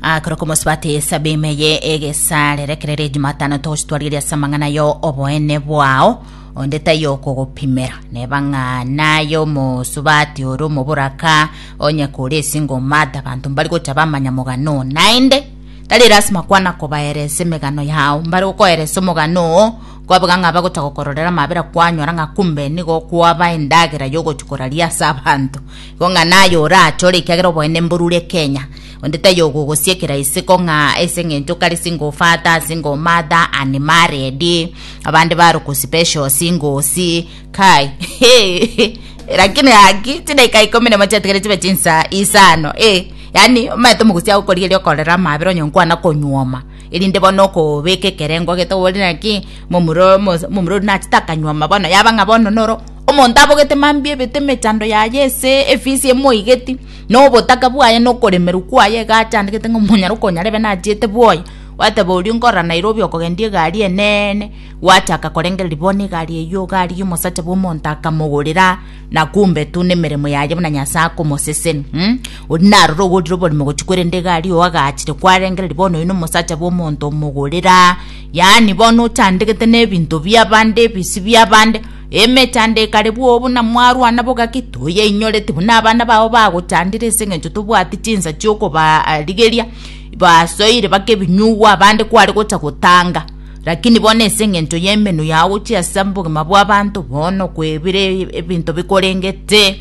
akora komosubati esabe imeye egesarere kerere ejumatano togositwarigeria ase amang'ana yo oboene bwao onde tayokogopimera neba ng'a naye omosubati ore omoboraka onye kore esingo mata abanto mbari gocha bamanya mogano oo naende tari lasima kwana kobaeresa emegano yao mbare gokoeresa omogano oo kwabeka ng'a bagocha gokororera amabera kwanyora ng'a kumbe nigo kwaba endagera yogochi koraria ase abanto Igo ng'a naye orachore, ekiagera oboene mborure Kenya. Onde taiyo ogogosiekera isiko ng'a ase eng'encho kare single father, single mother, unmarried. Abande barokwa special singles. Kai. Lakini haki chidakika ikomi nemo chiatigere chibe chinsaa isano. Eh. Yaani omanyete omogosi agokoria erio okorera amabera onye nkwana konyuoma. Erinde bono okobeka ekerengo ogete oborire naki momura momura ori nachete akanyuoma bono yaba ng'a bono noro Omonto abogete mambia ebete emechando yaye ase efisi emoigeti, na obotaka bwaye na okoremerwa kwaye iga achandegete ng'a monyare okonya rebe nachiete bwoye, gwateba oria nkorora Nairobi okogendia egari eneene, gwachaka korengereria bono egari eyio garigia omosacha bw'omonto akamogorera na kumbe tu nemeremo yaye buna Nyasae akomoseseni mh. Oria narora ogorire oborimo gochia korenda egari oo agachire kwarengereria bono oyo nomosacha bw'omonto omogorera, yaani bono ochandegete na ebinto bi'abande ebisi bi'abande. Emechando ekare bwoo buna mwarwana boka ki toyeinyoreti buna abana bao bagochandire ase engencho tobwati chinsa chi'okobarigeria. Basoire baka ebinyugwa abande kware gocha gotanga. Lakini bono ase engencho y'emenwa yao gochia ase obogima bw'abanto bono kwebire ebinto bikorengete.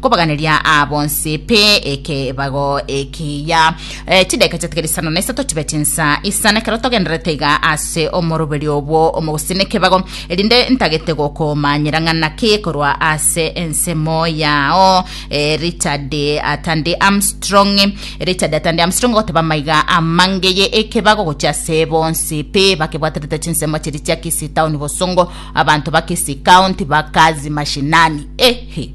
kobaganeria aa bonsi pi ekebago ekiya. Eh, chideka chiatigere isano na isato chibe chinsa isana ekero togendererete iga ase omoroberi obwo omogusii nekebago, erinde ntagete gokomanyera ng'ana ki korwa ase ensemo yao. Eh, Richard Atandi Armstrong Richard Atandi Armstrong ogoteba amaiga amangeye ekebago gochia ase bonsi pi bakebwaterete chinsemo chiria chia Kisii Town bosongo abanto ba Kisii County bakazi mashinani ehe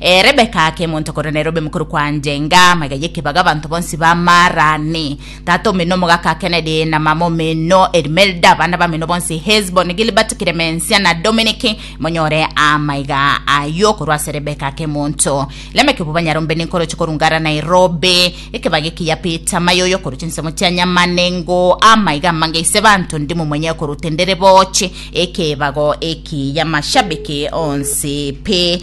Ee, Rebeka ake monto korwa Nairobi mokoro kwanje, enga maiga y'ekebago abanto bonsi b'amaarani. Tata omino omogaka ake Kennedy na mama omino Elimelda, abana bamino bonsi Hesbon, Gilbert, Clemencia na Dominic, monyore amaiga ayio korwa ase Rebeka ake monto. Lameki obo banyarombe ninkoroche korunga ara Nairobi, ekebago ekiya Peter mayoyo korwa chinsemo chia nyama nengo amaiga amange ise banto ndi momonyeo korwa otendere boche ekebago ekiya mashabiki onsi pi.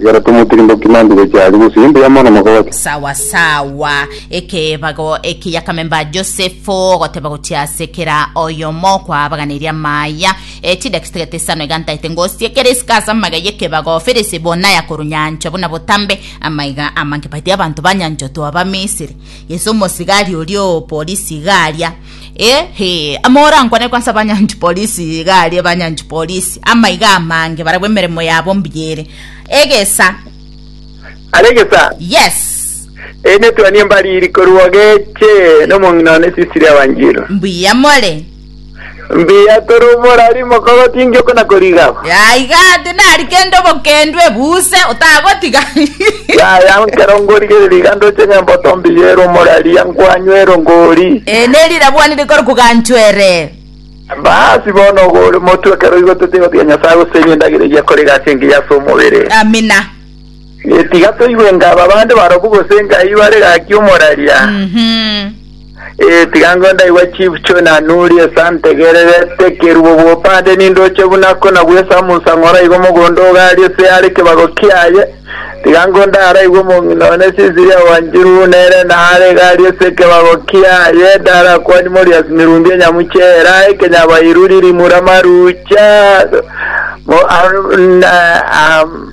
Igoro tomotirimboki mantu gochia aria gose imbu ya mono mokogocha. Sawa sawa. Ekebago eki yakamemba Josefu, ogoteba gochia ase kera oyomo kwaabaganeria amaya. E chidaki chitagete isano igantaete ngosi ekero isiko ase amagega y'ekebago, Felisi buna yakorunyanchwa buna botambe, amaiga amange baite abanto banyanchotwe Abamisiri. Yeso omosigari oria o polisi iga aria. Ehe, amo orankwane kwansa banyanchi polisi iga aria banyanchi polisi amaiga amange barabwo emeremo yabo mbiyere egesa Are egesa. yes Eri netwani embariri korwa geche nomong'ina one Sisiri Awanjiro. mbuya more Mbiya toro morari mokogotingi okona koriga. yaiga Nari kende obokendwe buuse otagotiga. Yaya, ekero ngorigereria iga ndoche ng'a emboto mbiya ere omoraria, nkwanywa ero ngori. Ee, neri rabwani rikore koganchwa ere. Baasi, bono ogo ore motwe, ekero oigotete gotiga Nyasae gose enye endagera eyia korega ase engiya ase omobere. Amina. Tiga toigwe nga aba bande barobwo gose nga aye bare gaki omoraria. Mhm. Eh, tiga ngo ndaigwa chief cho na nuri esantegererete kerubo bwopande nindoche buna kona bwesa amunsa ng'ora igo mogondo ogari ase are kebago kiaye tiga ngo ndaraigwe omong'ina one sisiria wanjiru nere nare gari ase kebago kiaye ndarakwani morias mirungi enyamuchera ekenyabairu ririmura marucha mo, ar, na, am,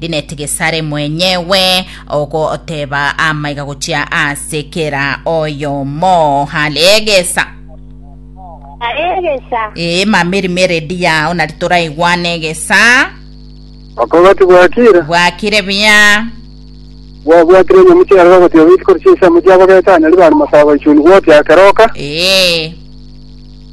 Linet Gesare mwenyewe ogoteba amaiga gochia ase kera oyomo. Halegesa. Aregesa. Ee, mama erimo eredi yao nari toraigwane egesa. Bakoba tibwakire, Bwakire buya. bwabwatire enyamu chiaye bagotiga goitikori chi'ensemo chiabo gete anyari bari masabo ichuni gwotia akeroka. Ee.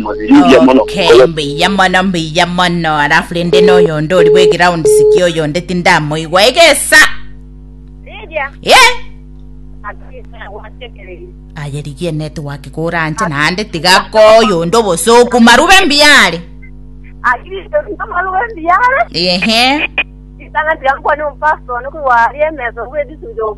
Okay, mbuya mono mbuya mono alafu rende noyo onde ori bwe ground siki oyo onde tindamoigwa egesa Lydia, ye akisa watekereri. aye rigie network koranche naende tiga koyo onde obosoku marube mbiare Akristo ndomaruwe mbiyare. ehe Isana tiga nkwane ompasoni kuri warie emeso kuri edisujo.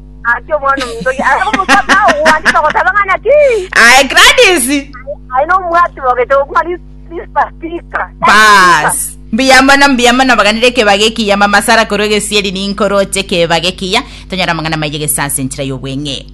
Ati omwana omontoki aye omosacha ogwancha ogoteba ng'a naki Aye Gladys. aye nomwati bogete okuma lispatika Bas. Mbuya mono, mbuya mono baganire ekebaga ekiya mama Sara korwa egesieri ninkoroche ekebaga ekiya tonyora amang'ana maiye gese ase enchera y'obweng'e.